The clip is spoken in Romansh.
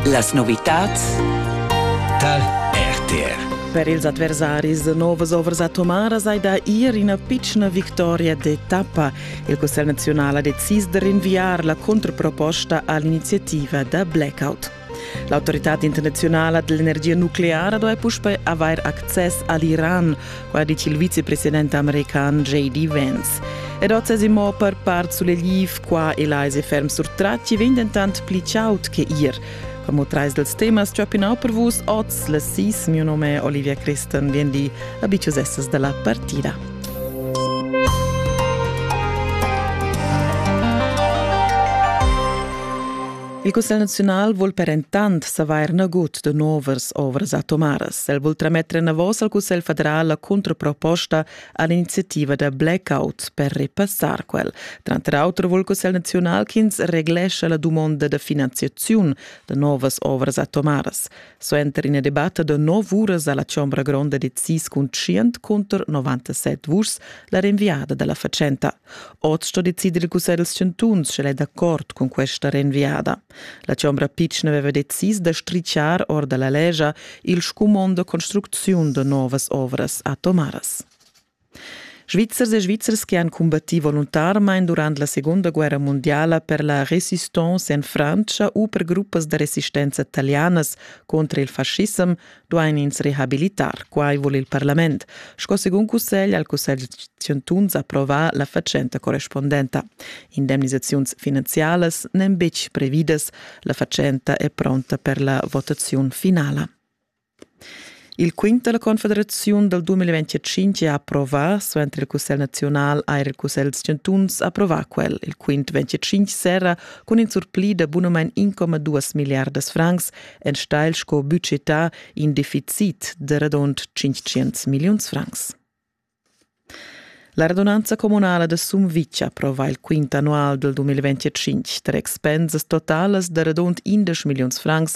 Las novitads tar RTR. Per ils adversaris novas ovras atomaras hai da ir ina pitschna victoria d'etappa. Il Cussegl nazional ha decis da rinviar la controproposta all'iniziativa da blackout. L'autoritad internazionala dell'energia nucleara doveva puspei avair access all'Iran. qua dice il vicepresidente american J.D. Vance. Ed ozzas immo per part sull'eliv qua e là se ferm surtratti vegn dentant pli chaud che ir. Como trais dels temas ciopinau per vus oz la sis, mio nome Olivia Christen, vien di abicius essas dalla partida. Il Cussegl naziunal vul per entant savair nagut da novas ovras atomaras. El vul trametter enavos al Cussegl federal la contraproposta a l'iniziativa da blackout per repassar quel. Tranter auter vul il Cussegl naziunal ch'ins reglescha la dumonda da finanziaziun da novas ovras atomaras. Suenter ina debatta da nov uras alla Chombra Gronda decis cun 100 cunter 97 vuschs la rinviada dalla fatschenta. Oz sto decider il cussegl chantuns, sch'el è d'accord cun questa renviada. La chombra pitschna aveva decis da strichar or da la legia il scumond da construcziun da novas ovras atomaras. Svizzers e Svizzers che han combattì voluntarmain durant la Segunda guerra mondiala per la resistenza en Frantscha u per gruppas da resistenza talianas contra il fascissem duain ins rehabilitar. Quai vul il parlament, sco segun cussegl al cussegl chantuns approvar la fatschenta correspondenta. Indemnisaziuns finanzialas n'èn betg previdas. La fatschenta è pronta per la votaziun finala. Il quint della Confederaziun dal 2025 ha approvà, suenter il Cussegl nazional ha il Cussegl chantuns approvà quel. Il quint 25 serra cun in surpli da bunamain 1,2 miliardas francs enstagl sco budgetà in deficit de radund 500 milliuns francs. La radunanza comunala de Sumvitg approva il quint annual del 2025 tre expensas totalas de radund 11 milliuns francs